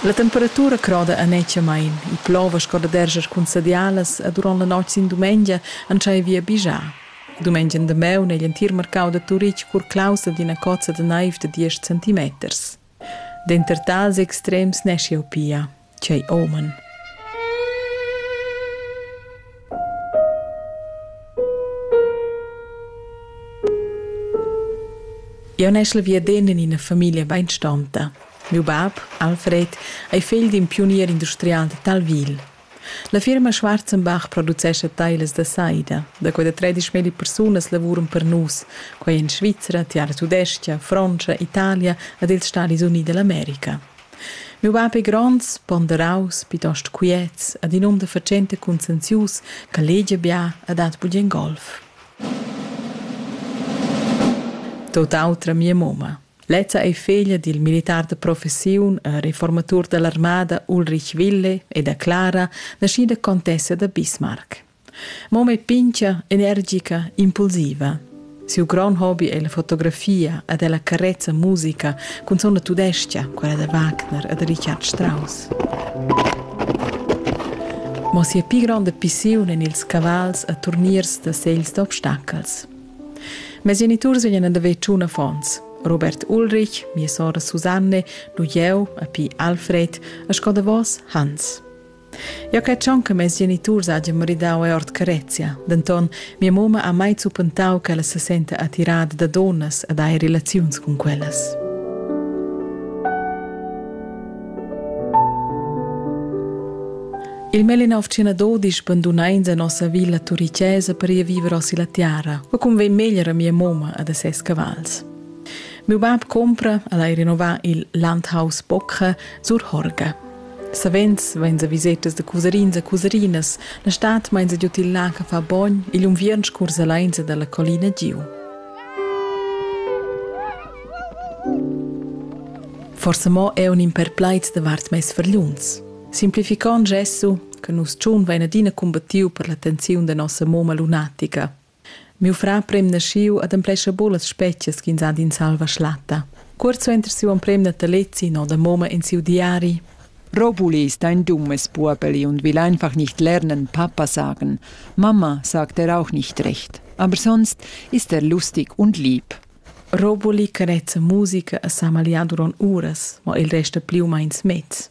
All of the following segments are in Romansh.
La temperatura croda annetschamain, il plover sco da derscher cun sadialas e durant la notg sin dumengia entschaiva vi a bigiar. Dumengia en damaun è l'entir marcau da Turitg cur claustra d'ina cozza da naiv da diesch centimeters. Denter tals extrems neschi jau pia, tgei omen! Jau neschel via dend en ina famiglia beinstanta. Miu bab, Alfred, ei fegl d'in piunier industrial da Talvil. La firma Schwarzenbach producescha teilas da saida. Da quei da tredisch milli persunas lavuran per nus, quei en Svizra, tiara tudestga, Frontscha, Italia ed ils Stadis Units dall'America. Miu bab ei gronds, ponderaus, plitost quiets ed in um da fatschenta conscienzius che legia bia e dat bugen golf. Tut autra mia mumma. Lezza ei feglia dil militar de professiun e reformatur dall'armada Ulrich Wille e da Clara, naschida contessa da Bismarck. Moma è pincia, energica, impulsiva. Siu grand hobby è la fotografia ed è la carezza musica cun sona tudestia, quella da Wagner e da Richard Strauss. Ma sia pli gronda pissiun en ils cavals e turniers da segls d'obstacels. Mes geniturs vegnan ad haver tschun affons. Robert Ulrich, mia sora Susanne, nu jeu, a pi Alfred, a sco davos Hans. Eu cred schon che mes geniturs hajan maridau e ord carezia, denton mia moma ha mai zuppentau che ella se senta attirada da donnas ed hai relaziuns cun quellas. Il Melinovcina dodisch bandunains a nossa villa turichesa per ir viver osi la tiara, ma cum vegn meglier a mia moma a da ses cavals. Meu bab compra al hai rinnovar il Landhaus Bocca sur Horga. Savens vain sa visetas da cusarins a cusarinas, la stat main sa giut il lac a fa bogn e l'unviern scurs alainsa dalla collina giu. Forse mo è un imperplaiz davart mes verliuns. Simplificond gesso che nus tschun vein adina cumbattiu per la tensiun da nossa moma lunatica. Miu frar prem naschiu ad emplescha buca las specias ch'ins ha d'in salva schlatta. Cuort suenter siu emprem natalezi no da moma in siu diari. Robuli ist ein dummes Burbeli und will einfach nicht lernen, Papa sagen. Mama sagt er auch nicht recht. Aber sonst ist er lustig und lieb. Robuli carezza musica a sa maliaduron uras, ma il resta più meins mezz.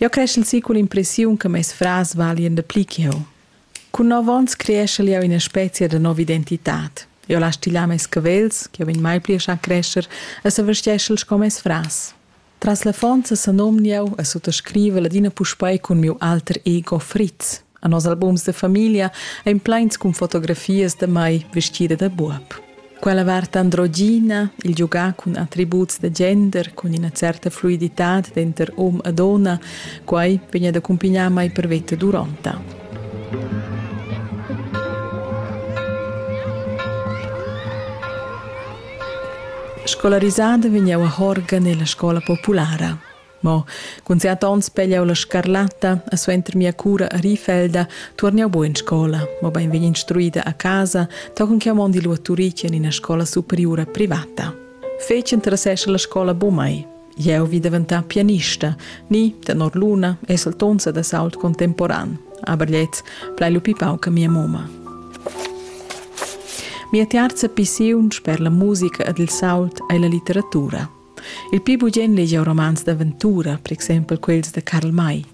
Jeu creschel si con l'impressiun che mes frars valien da pli che jeu. Cun nov onns creeschel jeu ina spezia da nova identitad. Jeu las stilar mes cavels, che vegn mai pli a schar crescher, e sa vestgeschel sco mes frars. Tras l'affons senomn jeu e suttascrivel adina puspei cun miu alter ego Fritz. A nos albums de famiglia ein pleins cun fotografias de mai vestida da buob. Quella vart androgina, il giugar cun attributs da gender, cun ina certa fluiditad denter hom e donna, quai vegn ad accompagnar mai per veta duronta. Scolarisada vegn jau a Horga nella scola populara. Mo cun siat onns pegliau la scarlatta e suenter mia cura a Rifelda tuorn jau buc in scola, mobein vegn instruida a casa, tochen ch'jau mondi lu a Turitg en ina scola superiura privata. Fetg interessescha la scola buc mai. Jeu vi daventar pianista, ni, tenor Luna, esaltonza da sault contemporan, aber lez plai lu pi pauc a mia moma. Mia tiarza pissiun sper la musica ed il sault ei la litteratura. Il pli bugen legia romans d'aventura, per exempel quels da Karl May.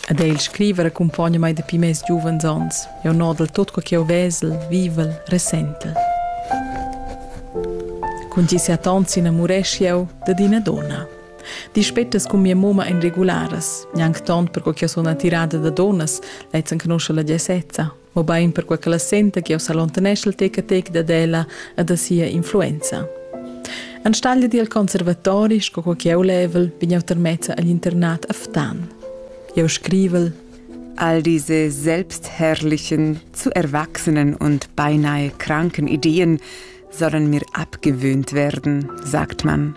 Ed el scriva accumpogna mai dapi mes giuvens onns. Jau nodel tot co che jau vesel, vivel, ressentel. Cun tgi seattont s'inamuresch jau dad ina donna. Dispettas cun mia moma en regularas, gnanc tont per co che sun attirada da donnas, lezzen conosce la gesezza. mobein perquei che la senta che jau s'allontaneschel tec a tec dad ella e da sia influenza. Enstagl dil conservatori, sco co che jau level, bin jau termezza agl internat a Ftan. Jau scrivel All diese selbstherrlichen, zu erwachsenen und beinahe kranken Ideen sollen mir abgewöhnt werden, sagt man.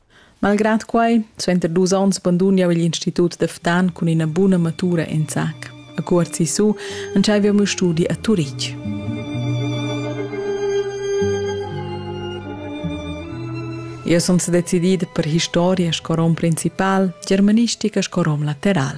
Malgrad quai, suenter dus onns bandun jau il institut da Ftan cun ina buna matura en zac. A Cuort Sisu entschaiv jau mio studi a Turitg. Eu sun sedecidida per historia sco rom principal, germanistica sco rom lateral.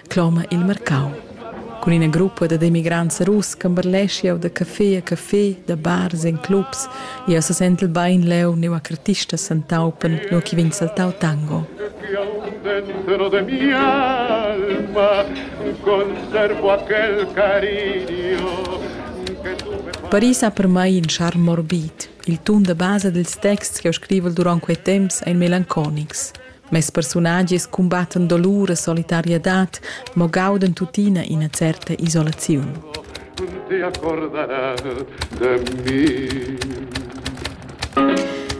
cloma il marcau. Cun ina gruppa dad emigrants russ camberlesch jau da café a café, da bars en clubs. Jau sesentel bain leu neu a cartistas s'entaupan, nua che vegn saltau tango. dentro de mi alma conservo aquel cariño Paris ha per mai in charme morbid. Il tun da basa dils texts che ho scrivul duront quei temps ein melanconics. Mes persunagias cumbattan dolur e solitariadad, mo gaudan tuttina ina certa isolaziun. Con ti accorderas de mi?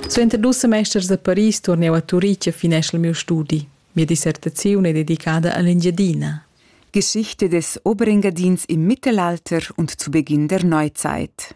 Suenter dus semesters a Paris turneu a Turitg e fineschel miu studi. Mia dissertaziun è dedicada all'Engiadina. Geschichte des Oberingadins im Mittelalter und zu Beginn der Neuzeit.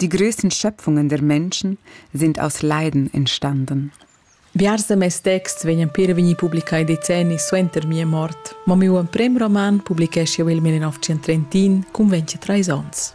Die größten Schöpfungen der Menschen sind aus Leiden entstanden. Biars da mes texts vegnan per vegnir publicai decennis suenter mia mort, ma miu emprem roman publichescha jau il 1931 cun 23 onns.